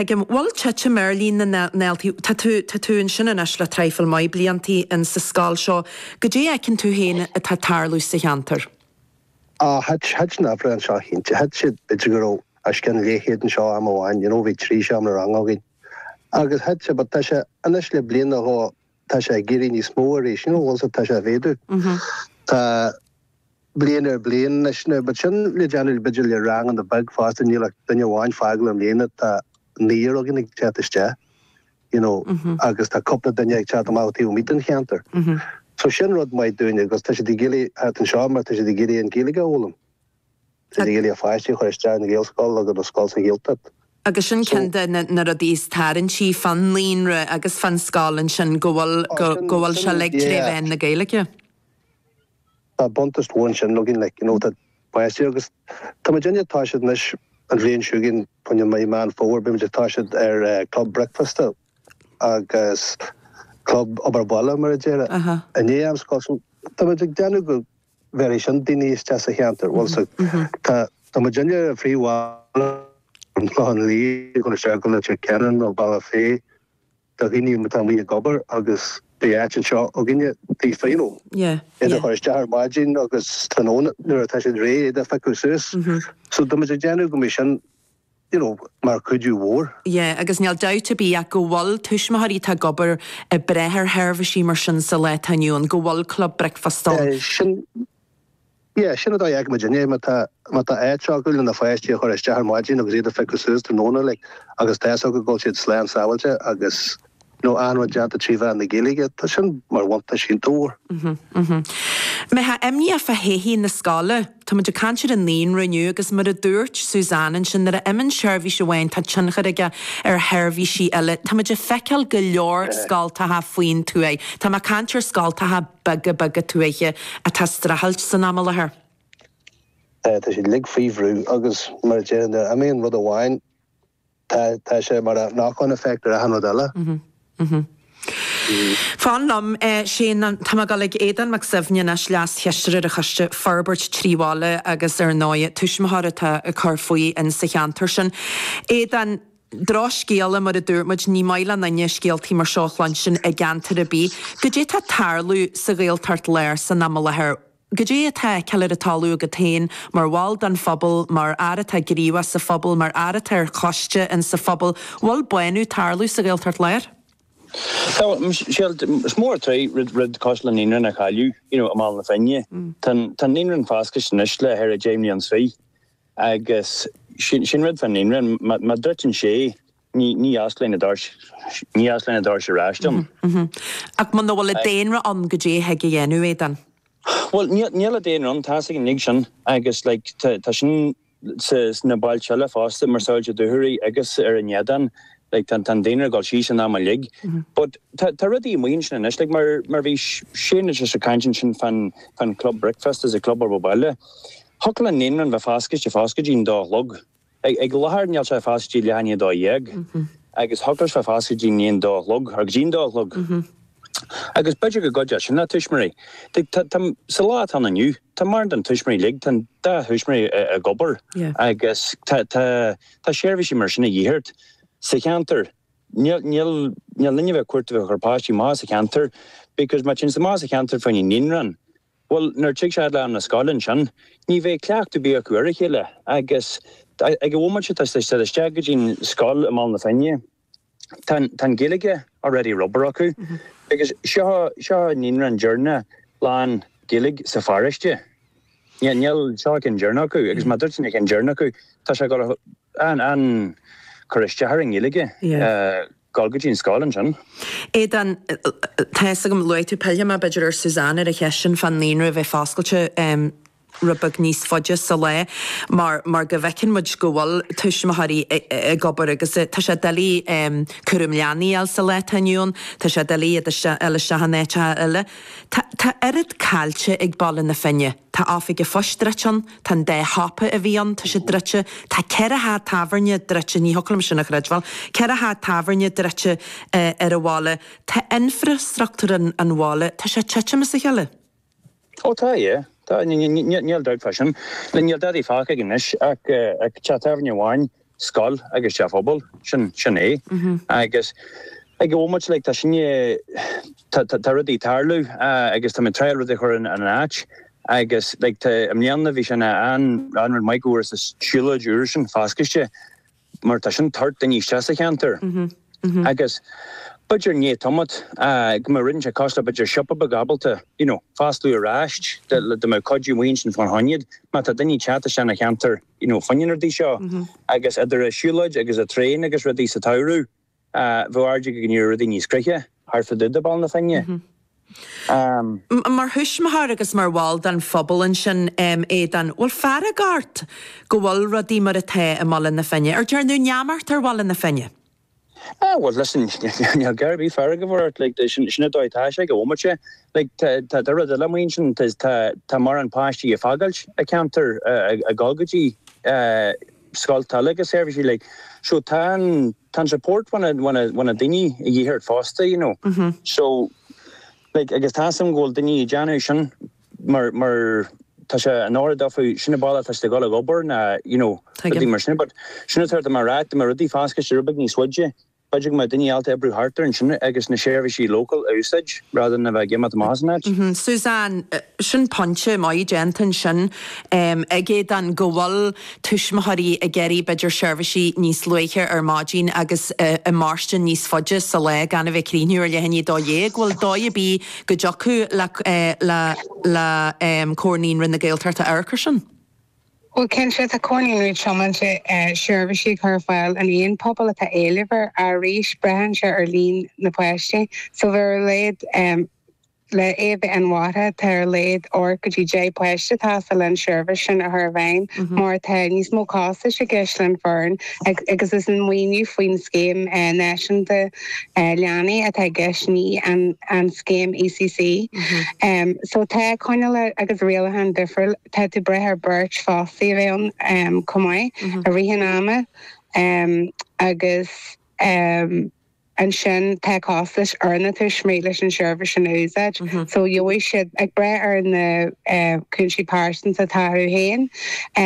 Ag an bhfuil titim ar líon na ndaltaí? Tá tú, tá tú ansin anois le traidhfil maith blianta in sa scoil seo. Goidé fheiceann tú féin atá ag tarlú sa cheantar? Á, thit, thit an uimhir anseo cinnte, thit sé b'fhéidir go raibh os cionn céad anseo am amháin, you know, bhí trí seomra ranga againn. Agus thit sé, but tá sé anois le bliain nó dhó, tá sé ag éirí níos mó arís, you know, also tá sé ag méadú. Tá bliain ar bliain anois now, but sin le déanamh b'fhéidir le ranganna beag fosta, níl ach duine amháin ag fágáil i mbliana, tá naonúr againn ag teacht isteach, you know, agus tá cúpla duine ag teacht amach ó thaobh amuigh den cheantar. So sin rud maith dúinne agus tá siad ag iarraidh theacht anseo mar tá siad ag iarraidh an Ghaeilge a fhoghlaim. Ag iarraidh a pháistí a chur isteach i nGaelscoil nó i scoil sa Ghaeltacht. Agus sin ceann de na rudaí is tarraingtí fán naíonra agus fán scoil ansin, go bhfuil sé uilig tré mheán na Gaeilge. Tá buntáiste mhór ansin againn, like, you know, tá páistí agus tá muid anois, tá siad anois, an bhliain seo chugainn, i mí Meán Fómhair, beidh muid ag toiseacht ar Club Bricfeasta agus Club Obair Bhaile, mar a déarfá, i ndiaidh am scoile. So, tá muid ag déanamh go, Bhéarfaidh sin daoine isteach sa cheantar. Bhuel, so, tá, tá muidinne ar an phríomhbhealach ón Chlochán Liath ag dul isteach go Leitir Ceanainn nó Bealach Féich, do dhaoine atá amuigh ag obair agus beidh áit anseo againne daofa, you know. Yeah, yeah. Iad a chur isteach ar maidin agus tráthnóna nuair atá siad réidh iad a phiocadh suas. So, tá muid ag déanamh go mbeidh sin you know, mar chuidiú mhór. Yeah, agus níl dabht ar bith ach go bhfuil tuismitheoirí atá ag obair ag brath ar sheirbhísí mar sin sa lá atá inniu ann, go bhfuil club bricfeasta ann. Yeah, sin, yeah, sin a fheiceann muidinne, má tá, má tá áit acu lena pháistí a chur isteach ar maidin agus iad a phiocadh suas tráthnóna, like, agus tá 'fhios acu go bhfuil siad slán sábháilte agus. nó achan rud déanta trí mheán na Gaeilge, tá sin mar bhuntáiste dóibh. Mbeifeá imníoch fá thodhchaí na scoile. Tá muid ag caint ar an naíonra inniu agus mar a dúirt Suzanne ansin, nuair a imíonn seirbhís amháin tá tionchar aige ar sheirbhísí eile. Tá muid ag feiceáil go leor scoltacha faoin tuaith, tá mé ag caint ar scoltacha beaga beaga tuaithe, atá ag streachailt san am i láthair. Tá siad uilig faoi bhrú agus mar a déarfainn, nuair a imíonn rud amháin, Tá, tá sé mar knock-on effect ar achan rud eile. Mhm, mhm. Fan liom, eh, Shane, an, tá mé ag dul ag Aodán Mac Suibhne anois, Leas-Chisteoir ar Choiste Forbairt Trí Bhaile agus ar ndóigh tuismitheoir atá ag cur faoi in sa cheantar sin. Aodán, drochscéala mar a dúirt muid, ní maith le n-aoinne scéaltaí mar seo a chluinstin i gceantar ar bith. Goidé tá tarlú sa Ghaeltacht Láir san am i láthair? Goidé atá feiceáilte ag tarlú agat féin mar bhall den phobal, mar fhear atá gníomhach sa phobal, mar fhear atá ar choiste in sa phobal? Bhfuil bánú ag tarlú sa Ghaeltacht Láir? Is mór an trua rud cosúil leis an naíonra a chailleadh, you know, i mBaile na Finne. Tá an naíonra foscailte anois le thart ar dheich mbliana 's fiche. Agus sin rud fán naíonra, má dhruideann sé, Ní fhosclann na doirse ar ais dom. Ach muna bhfuil an daonra ann caidé a thig a dhéanamh Aodán. Bhuel, níl an daonra ann, tá's againn uilig sin agus like tá sin sna bailte eile fosta, mar sa like Dúchoraidh agus ar an Éadan, like tá an daonra ag dul síos in am uilig. But tá rudaí amuigh ansin anois, like mar mar bhí Suzanne anois ag caint ansin fán fán club bricfeasta is an club obair bhaile, thiocfadh an naíonra a bheith foscailte foscailte go dtí'n dó a chlog. Faoi láthair níl sé foscailte ach go dtí leath i ndiaidh a dó dhéag, agus thiocfadh sé a bheith foscailte go dtí i ndiaidh a dó a chlog, nó go dtí'n dó a chlog. Agus b'fhéidir go gcuideodh sin le tuismitheoirí. Tá, sa lá atá ann inniu, tá mórán de na tuismitheoirí uilig, tá an dá thuismitheoir ag obair, agus tá, tá, tá seirbhísí mar sin a dhíth ort. Sa cheantar, níl, níl, níl sinne bheith ag cuartú bheith ag cur páistí amach as an cheantar, because má théann siad amach as an cheantar, fá choinne naíonra, Bhuel, nuair a thig sé le ham na scoile ansin, ní bheidh cleachtadh ar bith acu ar a chéile, agus ag an bhomaite seo, tá siad ag dul isteach go dtí'n scoil i mBaile na Finne, tá an Ghaeilge already ag obair acu, agus seo an naíonra deireanach lán Ghaeilge sa pharóiste. Níl, seo an ceann deireanach acu, agus má dhruideann an ceann deireanach acu, tá sé ag dul a, an, an, cur isteach ar an nGaeilge. Gabháil go dtí an scoil ansin. Aodán, Tá a fhios agam, luaigh tú pillfidh mé, b'fhéidir, ar Suzanne ar an cheist sin fán naíonra a bheith foscailte rud beag níos faide sa lá mar mar go bhfeiceann muid go bhfuil tuismitheoirí ag obair agus tá sé doiligh cúram leanaí a fháil sa lá atá inniu ann, tá sé doiligh iad a fháil isteach in áiteacha eile. Tá oiread caillte ag Baile na Finne. Tá oifig an phoist druidte ann, tá an dá shiopa a bhí ann, tá siad druidte, tá ceithre theach tábhairne druidte, ní thiocfadh liom sin a chreidbheáil, ceithre theach tábhairne druidte ar an bhaile, tá infreastruchtúr an bhaile, tá sé ag titim as a chéile. Ó tá, aye, tá, níl dabht fá sin, níl dadaí fágtha aige anois ach teach tábhairne amháin scoil agus teach pobail. Sin, sin é. Agus ag an bhomaite, like, tá sinne, tá, tá, tá rudaí ag tarlú agus tá muid ag tryáil rudaí a chur in, in áit agus, like, tá, i mbliana bhí sin an, an rud maith go bhfuarthas an siúlóid úr sin foscailte mar tá sin ag tabhairt daoine isteach sa cheantar agus b'fhéidir i ndiaidh tamalt go mbeadh rud inteacht cosúil le b'fhéidir siopa beag ábalta, you know, foscladh aríst dá, dá mbeadh cuidiú amuigh ansin fána choinne má tá daoine ag teacht isteach ina cheantar. you know fá choinne na rudaí seo agus idir an siúlóid agus an traein agus rudaí sa tsamhradh b'fhéidir go n-éireodh rudaí níos gnoithí thart fá dtaobh de Bhaile na Finne um. Mar thuismitheoir agus mar bhall den phobal ansin em Aodán bhfuil fearg ort go bhfuil rudaí mar atá i mBaile na Finne? An ndearnadh neamart ar Bhaile na Finne. Ah, bhuel, listen, níl cead ar bith fearg a bheith ort, like, sin an dóigh atá sé ag an bhomaite seo. Like, tá tá rud eile amuigh ansin, tá tá tá mórán páistí ag fágáilt an cheantair a' a' dhul go dtí eh scoilt eile agus seirbhísí like, so tá an tá an support ó na ó na ó na daoiní a dhíth ort fosta, you know. So, like, agus tá a fhios agam go bhfuil daoiní ag déanamh sin. mar, mar, tá sé in ord daofa, sin an ball atá siad ag dul ag obair ná you know rudaí mar sin but sin atá atá mé a rá, dá mbeadh rudaí foscailte giota beag níos faide, b'fhéidir go mbeadh daoine ábalta oibriú thart ar ansin agus na seirbhísí local a úsáid rather than a bheith ag imeacht amach as an áit. Suzanne, Sin pointe maith déanta ansin em, ag Éadaoin go bhfuil tuismitheoirí ag iarraidh b'fhéidir seirbhísí níos luaithe ar maidin agus i, ag mairstean níos faide sa lá gan a bheith ag críochnú ar leath i ndiaidh a dó dhéag, bhfuil dóigh ar bith. go dtiocfadh le le le Comhar Naíonraí na Gaeltachta amharc ar sin. Bhuel cinnte, tá Comhar Naíonraí tiomanta seirbhísí a chur ar fáil in aon phobal atá éileamh air. Arís, braitheann sé ar líon na bpáistí. So bheadh ar a laghad le é a bheith inmharthana tá ar a laghad ocht go dtí deich bpáiste atá ag teastáil leis an seirbhís sin a chur i bhfeidhm mar tá níos mó costais i gceist leis an fhoireann agus is an maoiniú faoin scéim náisiúnta leanaí atá i gceist, ní an scéim ECC. So tá coinníollacha agus rialacháin difriúil. Tá tú ag brath ar beirt fostaithe ann chomh maith i rith an ama agus ansin tá costais ar na tuismitheoirí leis an tseirbhís sin a úsáid. So gheobhaidh siad, ag brath ar na cúinsí pearsanta atá acu féin,